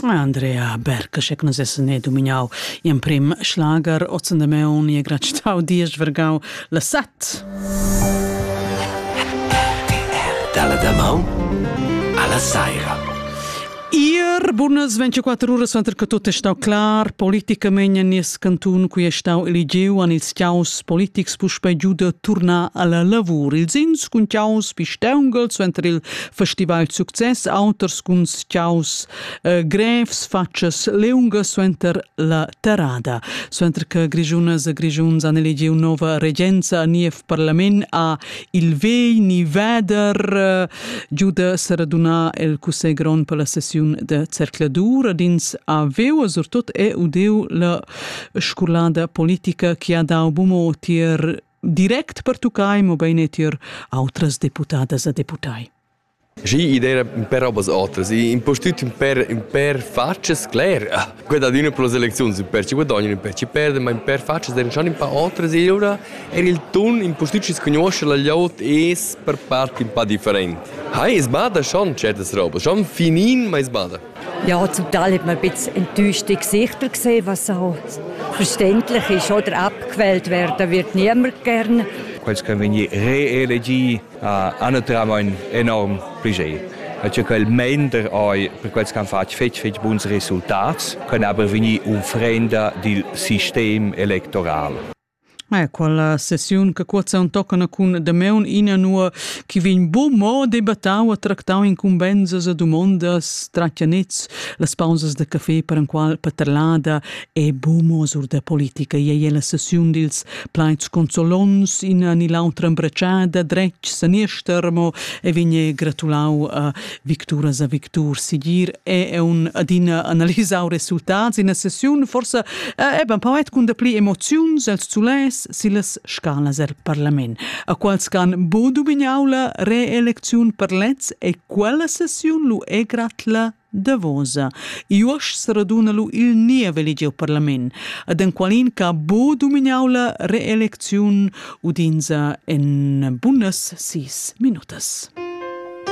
Andrea Berg che nus essan e dominau gl'emprem schlager ozen de Meun e gratstau diesch vergau la set. Dalla damaun alla saira. Ir bunas 24 ura suenter che tutto è stato clar, politicamente nies cantun qui è stato eligiu an ils ciaus politics puspei giu da turnar alla lavur. Ils ins cun ciaus pisteungel suenter il festival success auters cun schaus eh, grevs fatschas leunga suenter la terrada. Suenter che Grigiunas e Grigiuns han elegiu nova regenza a niev parlament a il vei ni veder eh, giuda seraduna el cussegl grond per la sessiun de cercladur ad ins aveu surtut e udeu la scolada politica che ha dau bumo tier direct pertuccai, mobein tier outras deputadas e deputai. Sì, idea per robas otras. Impostut per, per faccias cler. Quella di una per le elezioni, per ci guadagnano, per ci perdono, ma per faccias der schon un po' otras. E ora er il ton impostut ci conosce la lot è per parte un po' differente. Hai, es bada schon certas robas, schon finin, ma es bada. Ja, zum Teil hat man ein bisschen enttäuschte Gesichter gesehen, was so verständlich ist, oder abgequält werden wird niemand gern. Quels che vegni reelegì ha naturalmente enorm Budget. Hat ja quel mender oi per quels che han fatto fetg fetg buns resultati, können aber vegnir unfrenda dil sistem electoral. Ma quella sessiun che cuozza on toccana cun Dameun inanua chi vegn bun mo debattau e tractau incumbenzas e dumondas tratgianets, las pausas da café per enqual paterlada e bun mo sur da politica. Ei è la sessiun dils plaids consolons, ina ni l'autra embratschada, dretg saniester, mo e vegn gratulau a victuras e victurs sigir è un adina analisau resultats ina sessiun forse eh, eben poet cun dapli emoziuns els sulais silas scalas el parlament a quals can bo dubignaula reelecziun per lez e quella sessiun lu è gratla Davosa. Iuosch raduna lu il nia veligiu parlament, ad en qualin ca bo dumignau reelecziun udinza en bunas sis minutas.